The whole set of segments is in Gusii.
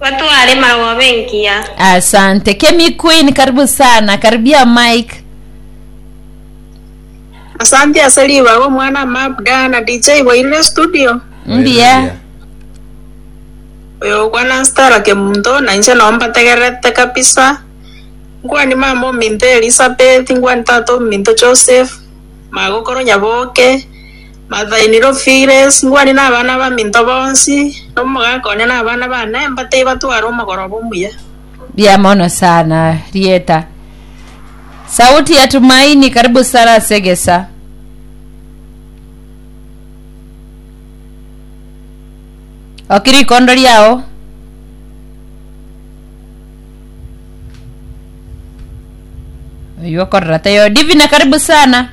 Batware marogoba engiya. Asante Kemi Queen karibu sana karibia mic. Asante ase ribaga omwana mabda na DJ boirire studio. Mbuya. Oyo okwana Stella Kemunto na inche nao mbategererete kabisa. Nkwani mama ominto Elizabeth, nkwani tata ominto Joseph, magokoro Nyaboke, Mathaini, Rofiles, Ngwani na abana abaminto bonsi, na omogaka one na abana bane, mbatei batware omogoroba omuya. Mbuya mono sana rieta. Sauti ya Tumaini karibu sana ase egesa. Oki rikondo riao. Oyu okorora tayo. Divine karibu sana.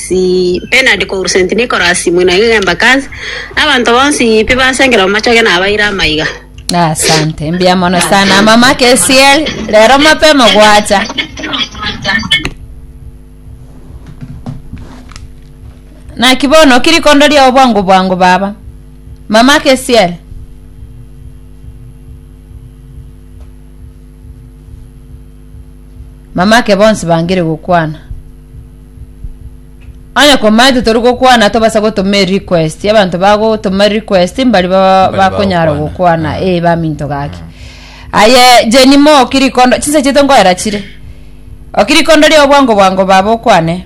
si Bernard korwa St Nicholas mwena igega Embakasi, abanto bonsi pi basengera omochoge nabaire amaiga. Asante mbia mono sana mama KCL, rero mapema gwacha. Naki bono kirikondo riao bwango bwango baba. Mama KCL. Mamake bonsi bangire gokwana. Onye komaete tori gokwana tobasa gotoma request abantu bagotoma request mbari bakonyara gokwana e eh, baminto gake aye jeni mo kirikondo chinsa chito ngoera chire okirikondo ria obwango bwango baba okwane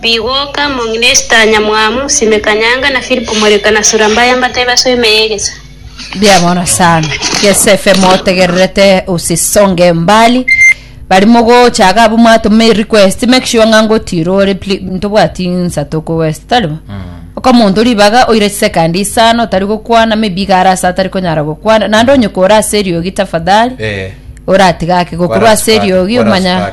Bigoka, Mong'inesta, Nyamwamu, Sime Kanyanga, na Philip Omoreka, na Sura Mbaya mbatebe ase oime y'egesa. Mbuya mono sana Yosefe motegererete usi songe mbali bari mogochaga abwo mwatome request make sure ng'a ngotira ore pli- ntobwati nsato ko west tari bo okomonto ribaga oire second isano otari gokwana maybe iga ara ase atari konyara gokwana naende onye kore ase eriogi tafadhali Eh, oratiga ake gokorwa ase eriogi omanya